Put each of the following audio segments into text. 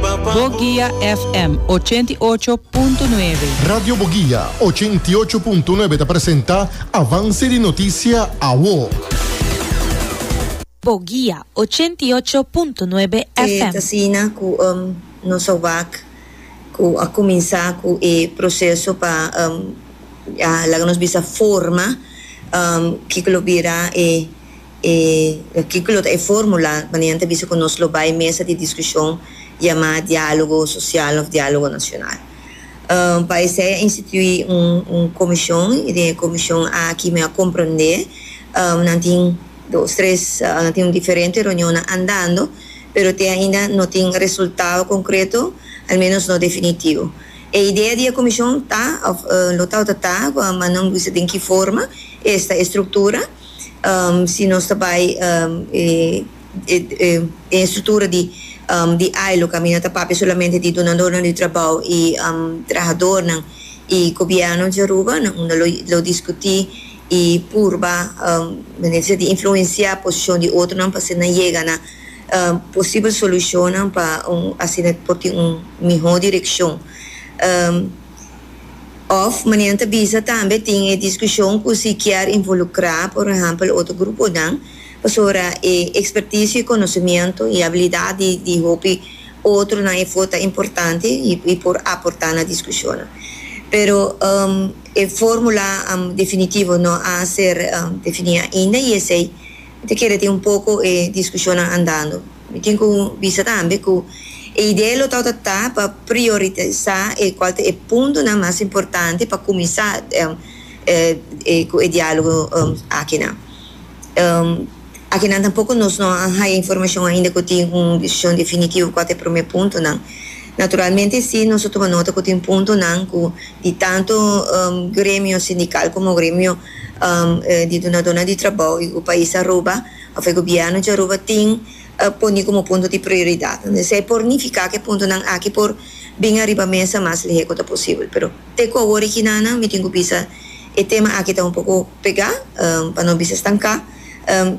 Boguia FM ochenta i ocho punto nuebe. Radio Boguia ochenta i ocho punto nuebe ta presenta Avance di Noticia Awo. Boguia ochenta i ocho punto nuebe FM. E ta asina cu nos a wak cu a cuminsa cu e proceso pa laga nos bisa forma kico lo bira e. E artíkulo ta e fórmula kuando nan ta bisa ku nos lo bai mesa di diskushon yamá diálogo sosial òf diálogo nashonal. Pa esei a instituí un komishon i den e komishon aki mi a komprondé nan tin dos tres nan tin diferente reunionnan andando pero te ainda no tin resultado konkreto al ménos no definitivo. E idea di e komishon ta òf lo tabata ta ku a manda un bisa den ki forma, esta e struktura. si nos ta bai den e struktura di ILO, kaminda ta papia solamente di dunadornan di trabou i trahadornan. I gobièrnu di Aruba nan unda lo diskutí i purba manera di ser di influensiá posishon di otronan pa asina yega na posibel solushonnan pa asina por tin un mihó direkshon. Òf, manera nan ta bisa tambe tin e diskushon ku si kier involukrá por ehèmpel otro gruponan, pasobra e ekspertisio i konosemiento i abilidat di di hopi otronan e for ta importante i por aportá na diskushonnan. Pero e fórmula definitivo no a ser definí ainda i esei ta kere tin un poko e diskushonnan andando. Mi tin ku bisa tambe ku e idea lo ta ota ta pa priorisá e kual ta e puntonan mas importante pa kuminsá ku e diálogo akinan. Akinan tampoko nos no a haya informashon ainda ku tin un desishon definitivo kual ta e promé puntonan. Naturalmente si nos a tuma nota ku tin puntonan ku di tantu gremio sindikal komo gremio di dunadónan di trabou di e pais Aruba, Of e Gobierno di Aruba tin a poni como punto di prioridad. Entonces esei por nifica cu e puntonan aki por bin ariba mesa mas lehe cu ta posibel. Pero te cu awor e kinanan mi tin cu bisa e tema aki ta un poco pega, pa no bisa stanca,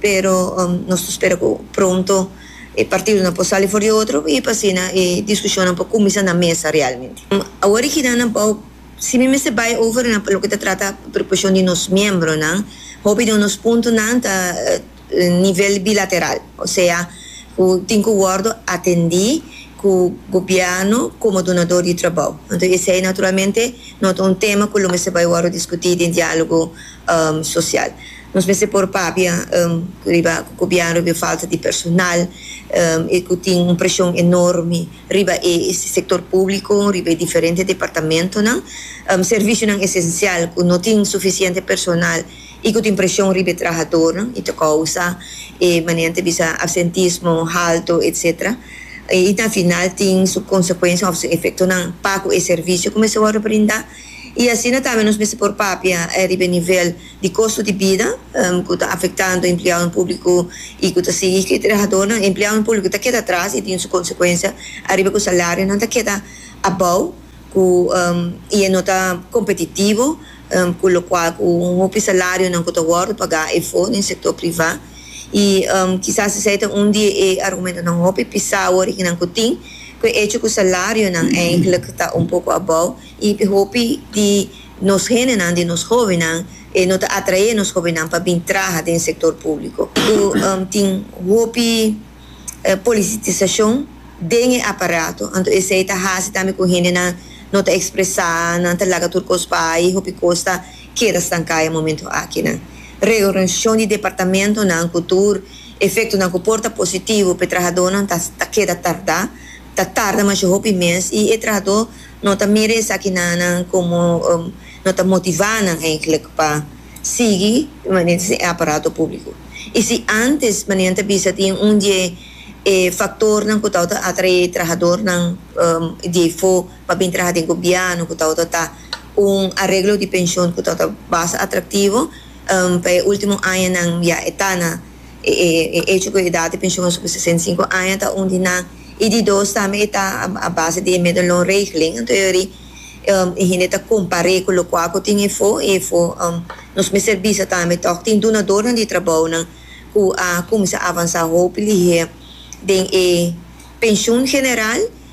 pero nos ta spera cu pronto e partidonan por sali for di otro y pa asina e discusionnan por cuminsa na mesa realmente. Awor e kinanan bao. Si mi mester bai over na loke ta trata preocupacion di nos miembronan, hopi di nos puntonan ta nivel bilateral, osea cu tin cu wordo atendi cu Gobierno como donador di trabao. Enton esey naturalmente no ta un tema cu lo mester bai wordo discuti den dialogo social. Nos mester por papia riba cu Gobierno riba falta di personal y cu tin un presion enorme. riba e sector público, riba e diferente departamentonan, servicionan esencial cu no tin suficiente personal y cu tin presion riba e trahadornan y ta causa e manera ta bisa absentismo halto etc. Y na final tin su consecuencianan of su efectonan pa cu e servicio cu mester wòrdu brinda y asina tambe nos mester por papia riba e nivel di kosto di bida ku ta afektando empleadonan públiko i ku ta sigui hikri trahadónan, empleadonan públiko ta keda atras i tin su konsekuensia ariba ku salarionan ta keda abou ku i e no ta kompetitivo ku lokual ku un hopi salarionan ku ta wòrdu pagá efo den sektor privá i kisas esei ta un di e argumentonan hopi pisá wòrdu ki nan ku tin ku e echo ku salarionan enkele ta un poko abou. Y hopi di nos hendenan, di nos hobennan, e no ta atrae nos hobennan pa bin traha den sector publico. Cu tin hopi polititisacion den e aparato. Anto esey ta haci tambe cu hendenan no ta expresa, nan ta laga tur cos bay y hopi cos ta keda stancaya momento akinan. Reorganisacion di departamentonan cu tur efectonan cu por ta positivo p'e trahadornan ta keda tarda. Ta tarda masha hopi mes y e trahador No ta mira esaki nannan como um no ta motivá nan eigenlijk pa sigui manera si e aparato público. Y si antes, manera nan ta bisa, tin un die e factornan cu tawata atraé trahadornan um diei fo pa bin traha den gobièrnu, cu tawata ta un areglo di pension cu tawata basta atractivo, um pa e último añanan ya e ta na. E e echo cu e edad di pensioen so cu sesenta y cinco aña ta un di nan y di dos tambe e ta a base di e medelloonregeling anto yori e hende ta compare cu locual cu tin efo y efo nos mester bisa tambe toc tin dunadornan di trabounan cu a cuminsa avansa hopi lihe den e pensioen general.